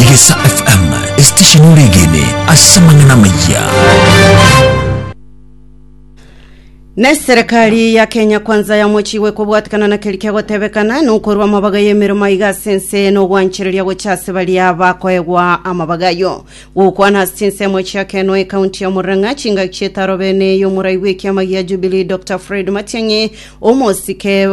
Egesa FM, esitesheni ore egene ase amang'ana amayia. Neserekari ya Kenya kwanza yamochiwe kobwatekana na keri kiagotebekana nokorwa amabaga y'emeremo aiga ase ense nogwanchereria gocha ase baria bakoegwa amabaga ayo gokwana ase ensemo echiakenwa ekaunti ya Murang'a chingaki chietaro bene y'omorai bw'ekiama gia Jubilee Dr Fred Matiang'i omosike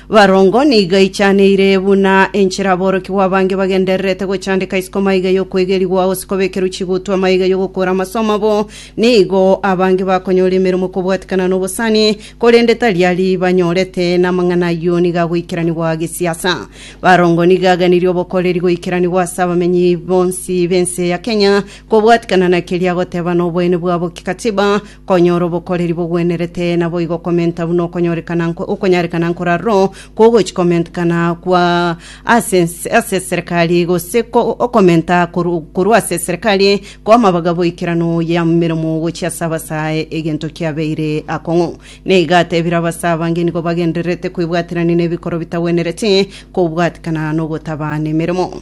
Barongo nigo eichaneire buna enchera aborokigwa abange bagendererete gochandeka isiko amaiga y'okoegerigwa, gose kobekerwa chigutu amaiga y'ogokora amasomo abo. Nigo abange bakonyora emeremo kobwatikana n'obosani, korende tari aria banyorete, na amang'ana ayio nigo agoikeranigwa gesiasa. Barongo nigo aganirie obokoreri goikeranigwa ase abamenyi bonsi b'ense ya Kenya, kobwatikana na keria agoteba na oboene bwabo kikatiba, Konyora obokoreri bogwenerete naboigo okomenta buna okonyorekana okonyarekana nkorarwo kw'ogochi komentekana kwa ase ense ase eserekari gose ko okomenta koru korwa ase eserekari kw'amabaga boikerano y'emeremo gochia ase abasae egento kiabeire akong'u. Na iga atebire abasae abange nigo bagendererete kwebwaterania nebikoro bitagwenereti kobwatekana nogotabana emeremo.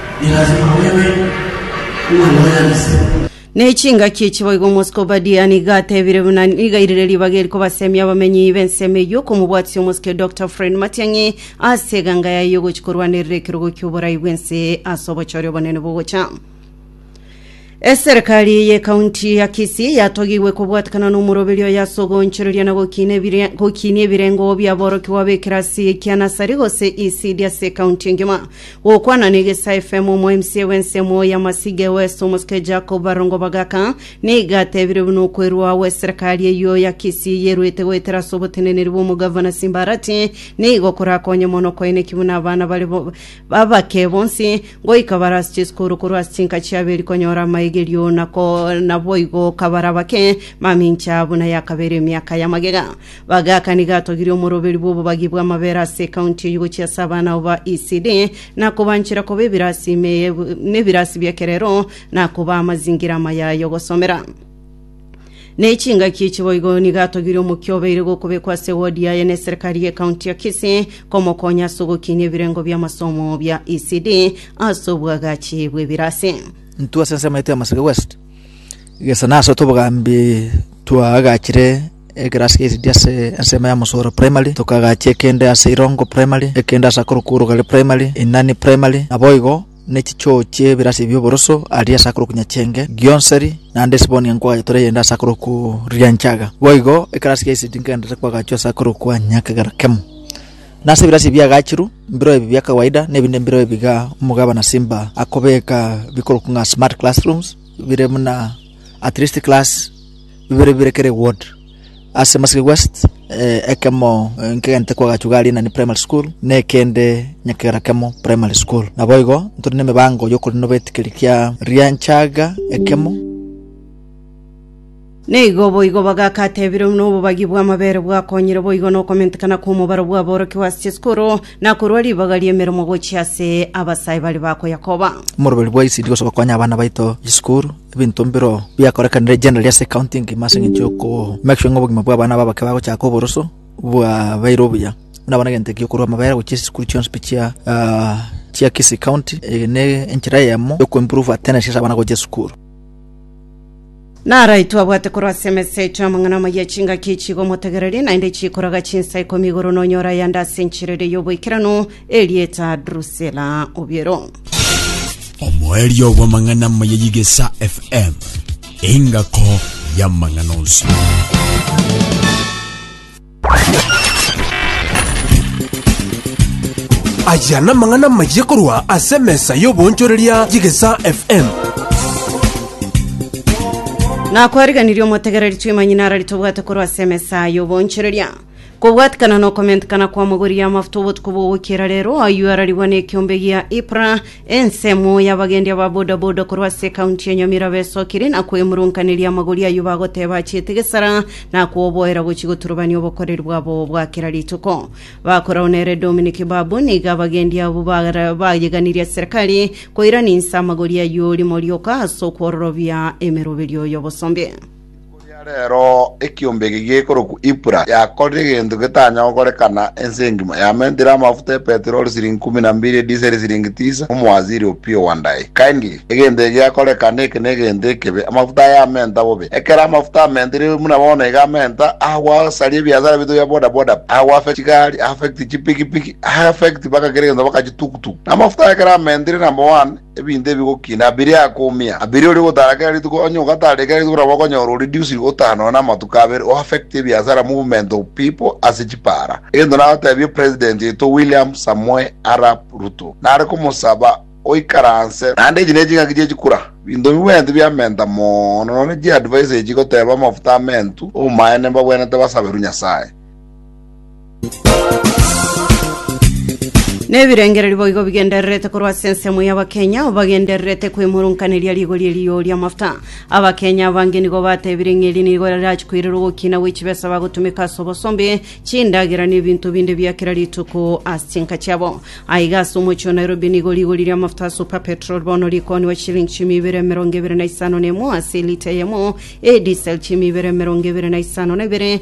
Nilasima bebe omoyang'anisi. Ne chingaki echi boigo omosike Obadia nigo atebire buna niga rire ribaga eri kobasemia abamenyi b'ensemo eyio okomobwatia omosike Doctor Fred Matiang'i ase eganga yaye y'ogochia korwanerera ekerogo ki'oborai bw'ense ase obochore obonene bogocha. Eserekari y'Ekaunti ya Kisii yatogigwe kobwatekana n'omoroberio oye ase ogoonchoreria na gokiina ebire- gokiinia ebirengo bi'aborokigwa b'ekerasi ekia nasari gose ECD ase ekaunti engima. Gokwana na Egesa FM, Omo-MCA bw'ensemo ya Masige West, Omosike Jacob Barongo Bagaka, nigo atebirie buna okwerua agwo eserekari eyio ya Kisii yeruete goetera ase oboteneneri bw'Omogavana Simbarati nigo korakonye mono koeneki buna abana bare bo- Babake bonsi, ngoika bare ase chisukuru korwa ase chinka chiabere konyora amaigerio, na naboigo kabare abake mamincha buna yakabeire emiaka ya magega. Bagaka nigo atogirie omoroberi bw'obobagi bw'amabere ase ekaunti eyio gochia ase abana abo ba ECD, na kobanchera koba ebirasi ime nebirasi bi'ekerero, na kobaa amazingira amaya ay'ogosomera. Ne chingaki echi boigo nigo atogire omokia obeire gokobekwa ase ewodi yaye ne eserekari y'ekaunti ya Kisii komokonya ase ogokinia ebirengo bi'amasomo bia ECD ase obwagachi bw'ebirasi. Intwe ase ensemo yaito ya Maseke West gesa nase oto obogambi twaagachire ekerasi kia ECD ase ensemo ya Mosoro Primary tokagachia ekende ase Irongo Primary ekende ase akorokwa Orogare Primary Inani Primary naboigo ne chichoo chi'ebirasi bi'oboroso aria ase akore okunya chenge gionseri, naende esiboni ya nkwaga yatura eyende ase akore okuria enchaga. Boigo ekerasi ya Isidi nkegenderete kwagachwa ase akore okwania ekegera kemo. Na ase ebirasi ebiagachiru, mbireo ebi bia kawaida, na ebinde mbireo ebiga omogabana Simba akobeka bikorokwa ng'a smart classrooms, bire buna at least class bibere bibere kera eward. Ase Marsabit West, ekemo nkegente korwa agachwa ga Rinani Primary School na ekende nyakegera kemo Primary School. Naboigo ntore nemebango yokorenda nobetikeri kia rianchaga ekemo. Nigo boigo bagakatebire buna obobagi bw'amabere bwakonyire boigo nokomentekana kw'omobaro bw'aborokigwa ase chisukuru, na korwa ribaga ri'emeremo gochia ase abasae baria bakoyakoba. Omorweri bwa ECD gocha gokonya abana baito chisukuru. ebinto mbiro biakorekanire generally ase ekaunti engima ase eng'encho yoko make sure ng'a obogima bwa abana aba abake bagochaka oboroso bwabeire obuya buna bono egento ekiya okorwa amabera gochia chisukuru chionsi pi chia ah, chia kisii county eye ne enchera eyemo yo kuimprove attendance ase abana gochia esukuru Narai twabwate korwa ase emesecho y'amang'ana amaya echingaki echigomotegereria, naende echikoraga chinsa ikomi igoro nonyore ayande ase enchera ere y'oboikeranu, Erieta Drusela Obiero. Omoerio bw'amang'ana amaya y'Igesa FM, engako y'amang'ana onsi. Aya n'amang'ana amaya korwa ase emesa y'oboonchoreria y'Igesa FM. Nakwariganirie omotegereri twimanyinara ritobwate korwa ase emesa y'oboonchoreria. Kobwatikana nokomentekana kw'amagori y'amafuta obotuko bw'ogokiera rero, ayio ararigwa nekiombe gia Ipra, ensemo y'abagendi aba bodaboda korwa ase ekaunti ya Nyamira besokire na kwemurunkaneria amagori ayio bagoteba achiete gesara na koboera gochia goturubania obokoreri bwabo bwa kera rituko. Bakorao nere Dominic Babu nigo abagendi abwo bara- bayeganirie serikali koirania inse amagori ayio rimo rioka ase okwororobia emeroberio y'obosombe. Erio reero ekiombe eke gekorokwa Ipura yakorire egento getanya gokorekana ense engima, yamentire amafuta epetroli siringi ikomi na mbiri, ediseri siringi tisa, omowaziri o Pio Wandayi. Kindly, egento eke geakorekana eke negento ekebe, amafuta aya amenta bobe. Ekero amafuta amentire buna bono iga amenta, agwasaria ebiasara biaito bia boda boda, agwaffect chigari, affect chipikipiki, affect mpaka kera egento mpaka chitukutuku. Amafuta aya ekero amentire number one, Ebinto ebi gokina abirie akoumia, abirie oria ogotara kera rituko, onye ogatara rikera rituko nabo okonyora o reduced gotara nonya na amatuko abere, o affect ebiasara, movement of people, ase chipaara. Egento nagotebie president oito William Samoei Arap Ruto, nare komosaba oikaranse naende echi neching'aki chie chikura, binto bibwenerete biamenta mono nonya ne chi advice echi igoteba amafuta amentu, obomaene mbabwenerete basaberu Nyasaye. Nebirengererio boigo bigendererete korwa ase ensemo y'Abakenya bagendererete kwemurunkaneria rigori erio ri'amafuta. Abakenya abange nigo batebire ng'a eri nigo rirachi koirera ogokina gwe chibesa bagotumeka ase obosombe, chindagera na ebinto binde bia kera rituko ase chinka chiabo. Aiga ase omochie o Nairobi nigo rigori ri'amafuta a Super Petrol bono rikoniwa chilingi chimi ibere emerongo ebere na isano na emo ase elita eyemo, e diesel chimi ibere emerongo ebere na isano na ibere,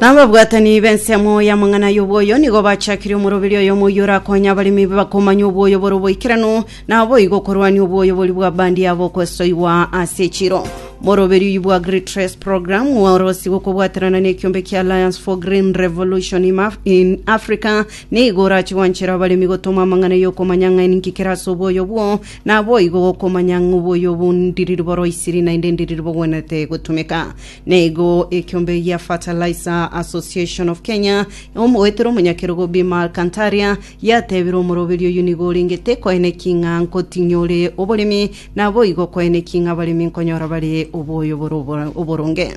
Ababwatani b'ensemo y'amang'ana y'obwoyo nigo bachakirie omoroberi oyomo oyio orakonya abaremi bakomanya obwoyo bore oboikeranu, na boigo okorwania obwoyo boria bwa bandi yabo okosoigwa ase echiro. Moroberi oyio bwa Great Trace Program orosiigwe okobwaterana n'ekiombe kia Alliance for Green Revolution in Af- in Africa nigo orache gwanchera abaremi gotoma amang'ana y'okomanya ng'a ninki kere ase obwoyo bwo Naboigo gokomanya ng'oboyo bw'ondiriri bw'oroisiri naende endiriri bogwenerete gotumeka. Naigo ekiombe gia Fertilizer Association of Kenya, omogoeteri omonyakerogo Bima Alcantaria, giatebire omoroberi oyio nigo orenge tekoeneki ng'a nkotinyia ore oboremi, naboigo koeneki ng'a abaremi nkonyora bare oboyo bore oboronge.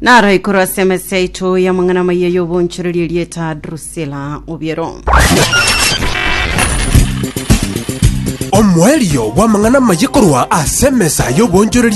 Naro ikorwa ase emesa yaito y'amang'ana amaya y'obonchoreria erieta Drusila obiero. Omoerio bw'amang'ana amaya korwa ase emesa y'obonchoreria